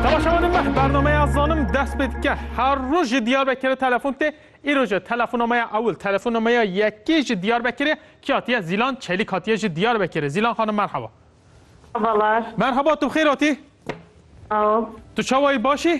Temaşevanên me bernameya zanim dest pê dike. Her roj ji Diyarbekirê telefon tê. Îro ji telefonameya ewil, telefonameya yekê ji Diyarbekirê kî hatiye? Zîlan Çelîk hatiye ji Diyarbekirê. Zîlan xanim merheba. Merhaba. Merhaba tu bi xêr hatî? Sağ ol. Tu çawayî baş î?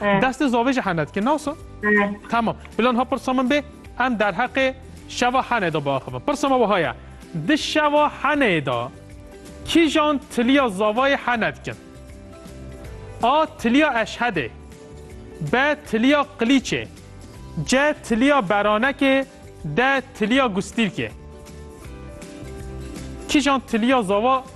Destê zavê jî hene dike naso? Tamam. Bilan ha pirsa min bê em derheqê şeva henê de biaxivin. Pirsa me wiha ye. Di şeva henê de kîjan tiliya zavayê hene dikin? A. Tiliya eşhedê B. Tiliya qilîçê C. Tiliya beranekê D. Tiliya gustîrkê Kîjan tiliya zava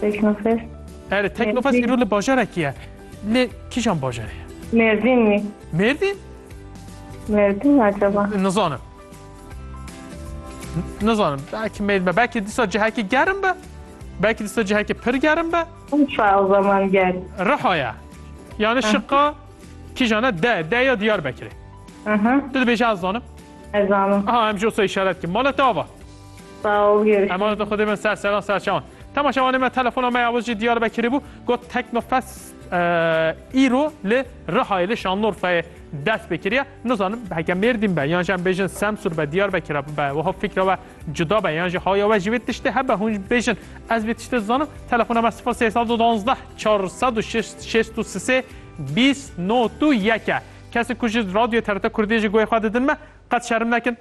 Teknofest. Ere Teknofest îro li bajarekî ye. Lê kîjan bajarê ye? Mêrdîn wî. Mêrdîn? Mêrdîn acaba. Nizanim. Nizanim. Belkî mêl me. Belkî dîsa cihekî gerim be. Belkî dîsa cihekî pir gerim be. Urfa o zaman gel. Riha ye. Yani şiqa kîjan e? De. De ya Diyarbekirê. Aha. Tu dibêje ez zanim. Ez zanim. Ha em jî osa îşaret kim. Mala te ava. Emanet li Xwedê bin ser seran ser çawan. Temaşevanê me telefona me ya wiz jî Diyarbekirê bû got Teknofest îro li Rihayê li Şanlorfeyê dest pê kiriye. Nizanim heke Mêrdîn be yan jî em bêjin Semsûr be Diyarbekir be wiha fikra we cuda be yan jî haya we jî vê tiştê hebe hûn bêjin ez vê tiştê dizanim telefona me 0312 463 20 not û yek e. Kesik ku ji radyoyê TRT Kurdiyê jî guhê xwe didin me qet şerm nekin.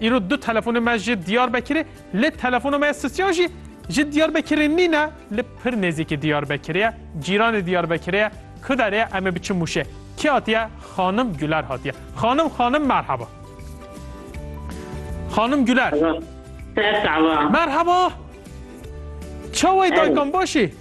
Îro du telefonê me ji Diyarbekirê lê telefonê me ya sisyan jî ji Diyarbekirê nîne li pir nêzîkî Diyarbekirê ye cîranê Diyarbekirê ye ku derê ye em ê biçin Mûşê kî hatiye xanim Güler hatiye xanim xanim merheba xanim Güler Merheba çawê dayikan başî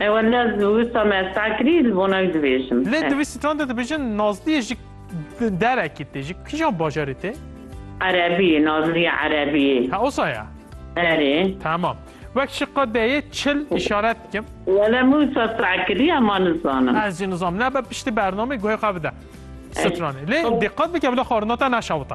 Ew ne wisa me esta kirî ji bona wî dibêjim. Lê di vî sîtran de dibêjin Nazliyê ji derekî tê, ji kîjan bajarê tê? Erebî, Nazliye Erebî. Ha osa ya? Erê. Tamam. Wek ji qedeyê çil îşaret dikim. Wele min wisa seh kirî hema nizanim. Ez jî nizanim. Nebe piştî bernamê guhê xwe bide sitranê. Lê dîqet bike bila xwarina te neşewite.